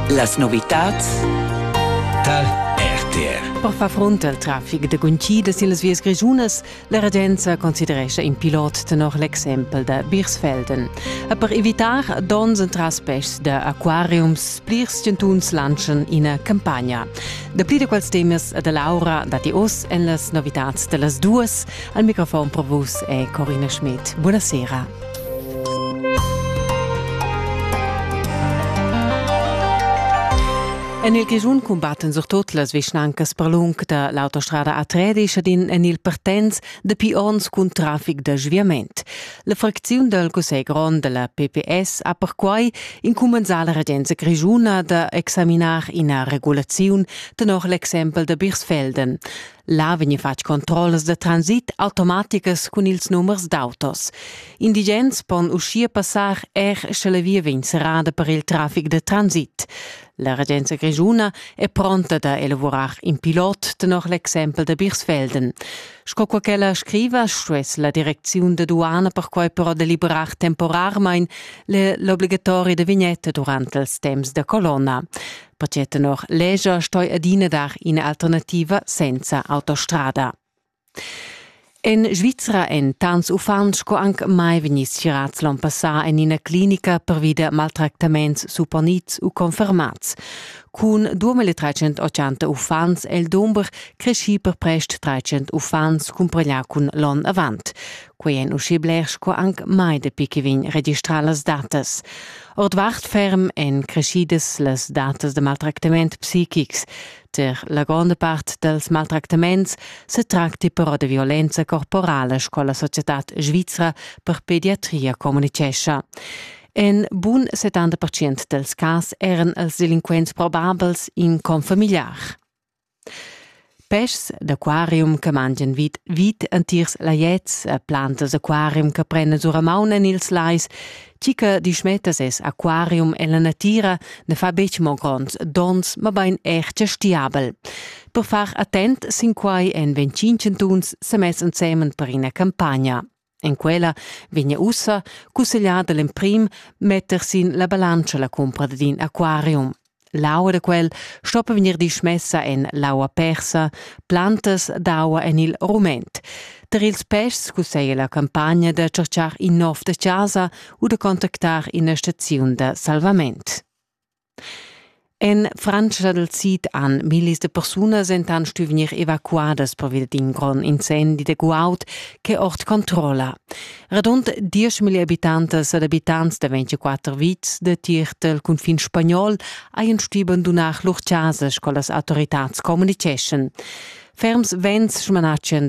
Las novitads tar RTR. Per far front al traffic da guncidas illas vias grischunas, la regenza considerescha in pilot tenor l'exempel da Birsfelden. E per evitar donns entras peschs da aquariums, plirs chantuns lanschan ina campagna. Dapli da quels temas e da Laura datti oz en las novitads da las duas. Al microfon provus è Corina Schmidt. Buonasera. En il Grischun cumbattan surtut las vischnancas per lung da l'autostrada A3 ed in en il Partenz dapi onns cun traffic da sviament. La fracziun dal Cussegl grond da la PPS ha perquai incumbensà la regenza grischuna da examinar ina regulaziun tenor l'exempel da Birsfelden. Là vegni fatg controllas da transit automaticas cun ils numers d'autos. Indigens pon uschia passar er sche la via vegn serrada per il traffic da transit. La regenza grischuna è pronta da elavurar in pilot tenor l'exempel da Birsfelden. Sco qua ch'ella scriva, stuess la direcziun da duana perquai però deliberar temporarmain l'obligatoria da vignetta durant ils temps da colonna. perché tenor leger stoi adina dar ina alternativa senza autostrada. En Svizra en tants uffants sco anc mai vegniss schirats l'on passà en ina clinica pervi da maltractaments supponits u confermats. Cun 2380 uffants è il dumber creschì per prest 300 uffants cumpraglià cun l'on avant. Quei èn uschè bler sco anc mai dapi che vegn registrà las datas. Ordvart ferm èn creschidas las datas da maltractament psichics. Per la gronda part dals maltractaments se tracti però da violenza corporala, sco la societad svizra per pediatria communicescha. En bun 70% dels cas eran els delinquents probabels in confamiliar. Peschs d'aquarium che mangian vid vid entirs laiets e plantas aquarium che prendas ora maun en ils lais, tgi che dismetta ses aquarium en la natira, ne fa betg mo gronds donns, mabain er gestiabel. Per far attent sin quai èn 25 chantuns semess ensemen per ina campagna. En quella vegna ussa cussegliada l'emprim metter sin la balantscha la cumpra dad in aquarium. L'aua da quel stoppa vegnir dismessa en l'aua persa, plantas d'aua en il rument. Tar ils pests cusseglia la campagna da cercar in nov da chasa u da contactar ina staziun da salvament. En Frantscha dal sid han millis da persunas entant stuì vegnir evacuadas pervia d'in grond incendi da guaud ch'è ord controlla. Radund dieschmilli abitantas ed abitants da 24 vitgs datier dal cunfin spagnol hajan stuì bandunar lur chasas, sco las autoritads communiceschan. Ferms vents smanatschan da